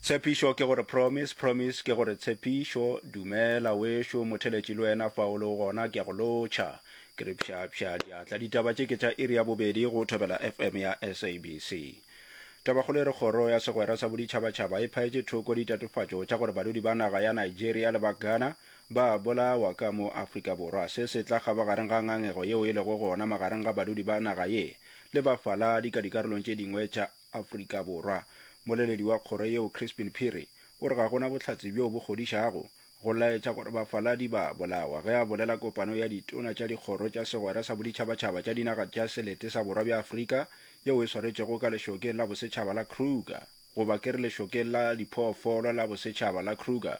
Tshepišo ke gore promise, promise ke gore tshepišo Dumela wešo motheletši le wena fa o lego gona ke a go lotšha Ke re pšhapšha diatla Ditaba tše ke tša iri ya bobedi go Thobela FM ya SABC Tabakgolo e re Kgoro ya segwera sa boditšhabatšhaba e phaetše thoko ditatofatšo tša gore badudi ba naga ya Nigeria le ba Ghana ba bolawa ka mo Afrika Borwa, se se tla kgaba gareng ga ngangego yeo e lego gona magareng ga badudi ba naga ye le bafaladi ka dikarolong tše dingwe tša Afrika Borwa. Moleledi wa kgoro yeo Crispin Phiri o re ga go na bohlatse bjoo bo kgodišago go laetša gore bafaladi ba bolawa ge a bolela kopano ya ditona tša dikgoro tša segwera sa boditšhabatšhaba tša dinaga tša selete sa borwa bja Afrika yeo e swaretšwego ka lešokeng la bosetšhaba la Kruger goba ke re lešokeng la diphoofolo la bosetšhaba la Kruger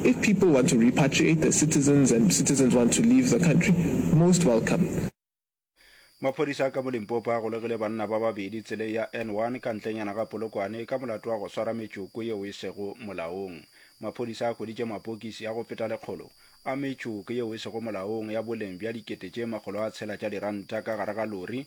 If people want to repatriate their citizens and citizens want to leave the country, most welcome. Maphodisa ka mo Limpopo a golegile banna ba babedi tseleng ya N1 ka ntlenyana ga Polokwane ka molato wa go swara metšoko yeo e sego molaong. Maphodisa a hweditše mapokisi a go feta lekgolo a metšoko yeo e sego molaong ya boleng bja dikete tše makgolo a tshela tša diranta ka gare ga lori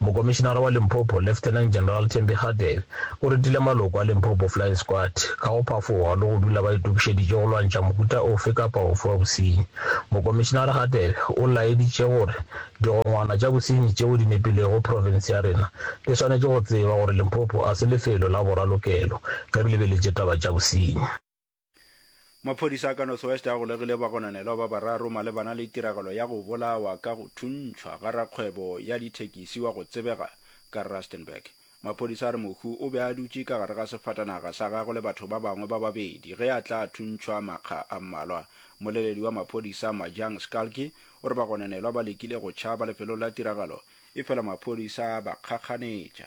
Mokomišinara wa Limpopo, Lieutenant General Thembi Kgathebe, o retile maloko a Limpopo Flying Squad ka go phafoga le go dula ba itokišeditše go lwantšha mohuta ofe kapa ofe wa bosenyi. Mokomišinara Kgathebe o laeditše gore digongwana tša bosenyi tšeo di nepilego profense ya rena di swanetše go tseba gore Limpopo a se lefelo la boralokelo ge re lebeletše taba tša bosenyi. Maphodisa a ka North West a golegile bagononelwa ba bararo malebana le tiragalo ya go bolawa ka go thuntšhwa ga rakgwebo ya dithekisi wa go tsebega ka Rustenburg. Maphodisa a re Mohu o be a dutše ka gare ga sefatanaga sa gagwe le batho ba bangwe ba babedi ge a tla thuntšhwa makga a mmalwa. Mmoleledi wa maphodisa Majang Skalki o re bagononelwa ba lekile go tšhaba lefelong la tiragalo efela maphodisa a ba kgakganetša.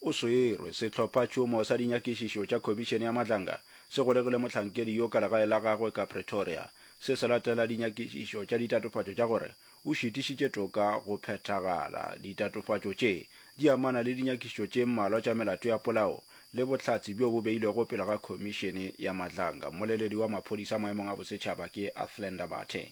O swerwe. Sehlophatšhomo sa dinyakišišo tša Khomišene ya Matlanga se golegile mohlankedi yo ka legae la gagwe ka Pretoria, se se latela dinyakišišo tša ditatofatšo tša gore o šitišitše toka go phethagala. Ditatofatšo tše di amana le dinyakišišo tše mmalwa tša melato ya polao le bohlatse bjo bo beilwego pele ga Khomišene ya Matlanga. Mmoleledi wa maphodisa maemong a bosetšhaba ke Athlenda Mathe.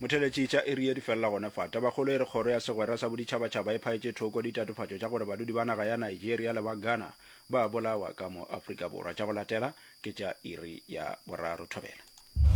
Motheletši tša iri e di felela gona fa. Tabakgolo e re Kgoro ya Segwera sa Boditšhabatšhaba e phaetše thoko ditatofatšo tša gore badudi ba naga ya Nigeria le ba Ghana ba a bolawa ka mo Afrika Borwa. Tša go latela ke tša iri ya boraro. Thobela.